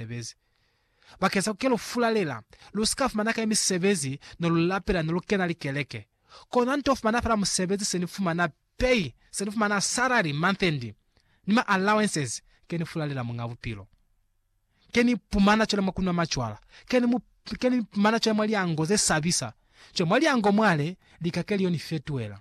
misebezi. Bakeng sa kukelo fulalela, lusika fumana kae misebezi ne lu lapela ne lu kena likeleke? Kona nto fumana fela musebezi se ni fumana pay, se ni fumana salary month end, ni ma allowances, ke ni fulalela Muñ'a Bupilo. Ke ni pumana cwale mwa kunwa macwala, ke ni mu, ke ni pumana cwale mwa liango ze sabisa. Cwale mwa liango mwale, lika ke lio ni fetuela.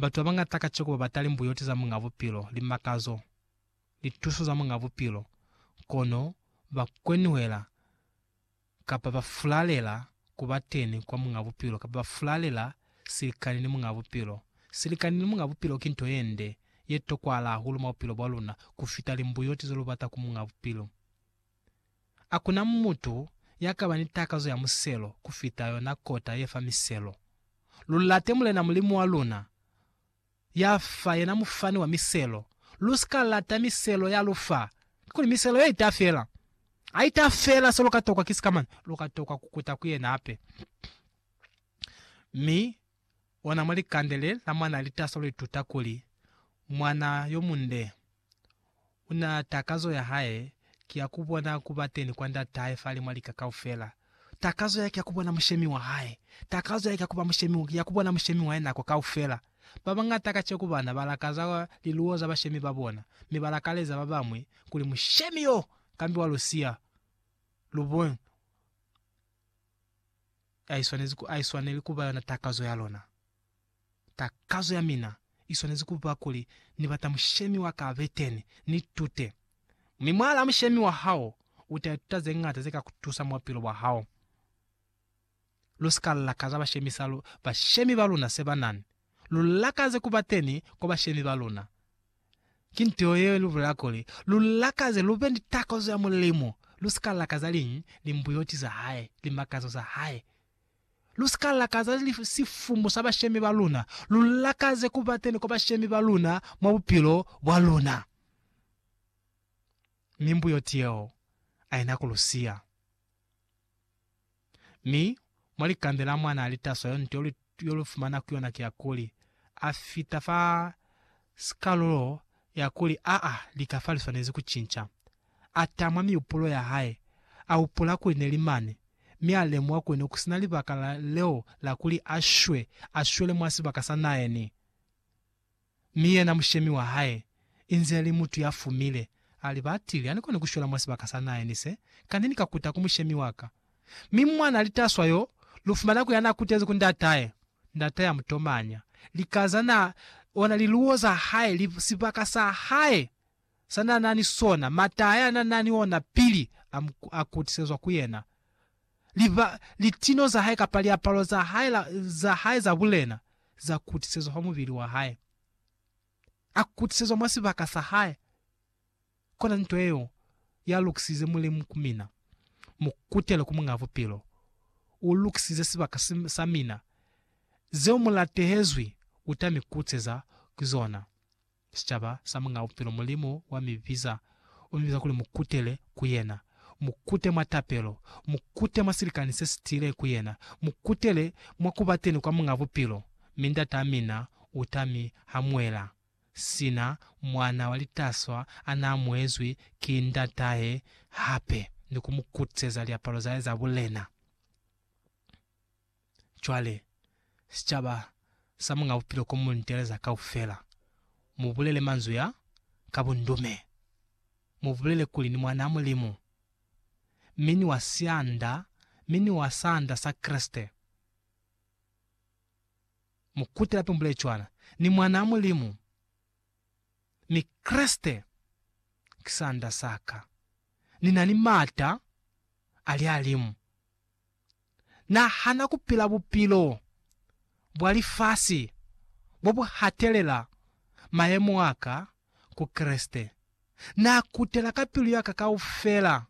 Batu babañata kaciko babata limbuyoti za Muñ'a Bupilo, limakazo, lituso za Muñ'a Bupilo, kono ba kwenuhela kapa ba fulalela ku ba teni kwa Muñ'a Bupilo kapa ba fulalela silikani ni Muñ'a Bupilo. Silikani ni Muñ'a Bupilo ki nto ye nde, ye tokwahala hahulu mwa bupilo bwa luna ku fita limbuyoti ze lu bata ku Muñ'a Bupilo. Hakuna mutu ya kaba ni takazo ya muselo kufita yona kota ye fa miselo. Lu late Mulena Mulimu wa luna, ya fa, yena Mufani wa miselo. Lu si ka lata miselo ya lu fa, kakuli miselo yeo ita fela. Ha ita fela, se lu ka tokwa ki sikamana, lu ka tokwa kukuta ku yena hape. Mi ona mwa likande le la mwana litaso lu ituta kuli, Mwana yo munde u na takazo ya hae ki ya ku bona ku ba teni kwa Ndat'ahe fa limwa lika kaufela. Takazo ya ki ya ku bona Mushemi wa hae. Takazo ya ki ya ku ba mushemi, ya ku bona Mushemi wa hae nako kaufela. Ba bañata kaceku bana ba lakaza liluwo za bashemi ba bona, mi ba lakaleza ba bañwi kuli Mushemi yo kambiwa lu siya lubonyi lwa bona. Haiswaneli kuba yona takazo ya lona. Takazo ya mina iswanezi kuba kuli ni bata mushemi wa ka abeteni, ni tute. Mi mwala mushemi wa hao uta ituta zeñata ze ka kutusa mwa bupilo bwa hao. Lu si ka lakaza bashemisa bashemi ba luna se banani. Lu lakaze kuba teni kwa bashemi ba luna. Ki nto yeo i lu bulela kuli, Lu lakaze, lu be ni takazo ya Mulimu, lu si ka lakaza liñi? Limbuyoti za hae, limakazo za hae. Lu si ka lakaza sifumu sa bashemi ba luna, lu lakaze ku ba teni kwa bashemi ba luna mwa bupilo bwa luna. Mimbuyoti yeo a i na ku lu siya. Mi, mwa likambe la mwa na li taswa yo nto yo lu fumana ku yona kiya kuli, a fita fa sikalulo ya kuli aa lika fa li swanezi ku cinca. A tamwa miupulo ya hae, a upula kuli ne li mane, mi a lemuha kuli ne ku sina libaka leo la kuli a shwe, a shwele mwa sibaka sa naeni. Mi yena mushemi wa hae, inze ali mutu ya fumile, ali, Ba tile, ani koni ku shwela mwa sibaka sa nahe, ni se, Kani ni ka kuta ku mushemi wa ka. Mi mwana litaswa yo, lu fumana ku ya na kutezi ku ndatahe, ndatahe a mu tomanya, lika za na, ona liluwo za hae, li, sibaka sa hae, sa n'a na ni sona, m'ata a n'a na ni ona pili a mu a kutisezwa ku yena, liba, litino za hae kapa liapalo za hae, la, za hae za bulena, za kutisezwa fa mubili wa hae. A kutisezwa mwa sibaka sa hae. Kona nto yeo ya lukisize Mulimu ku mina. Mu kutele ku Muñ'a Bupilo. U lukisize sibaka sa mina. Zeo mu latehezwi u ta mi kutiseza ku zona. Sicaba sa Muñaa Bupilo Mulimu wa mi biza, u mi biza kuli mu kutele ku Yena. Mu kute mwa tapelo. Mu kute mwa silikani se si tiile ku Yena. Mu kutele mwa ku ba teni kwa Muñaa Bupilo, mi Ndataa mina u ta mi hamuela, sina mwana wa litaswa a na amuezwi ki ndatahe hape, ni ku mu kutiseza liapalo za hae za bulena. Cwale, sicaba sa Muñ'a Bupilo ko mu nteleza kaufela, mu bulele manzwi a, ka bundume. Mu bulele kuli ni Mwan'a Mulimu, mi ni wa sianda, mi ni wa saanda sa Kreste. Mu kutela pe mu bulele cwana, Ni Mwan'a Mulimu, mi Kreste ki saanda sa ka. Ni na ni m'ata a lihalimu. Na hana ku pila bupilo bwa lifasi bo bu hatelela mayemo a ka ku Kreste. Na kutela ka pilu ya ka kaufela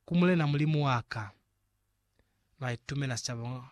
ku Mulena Mulimu wa ka. Na itumela sicaba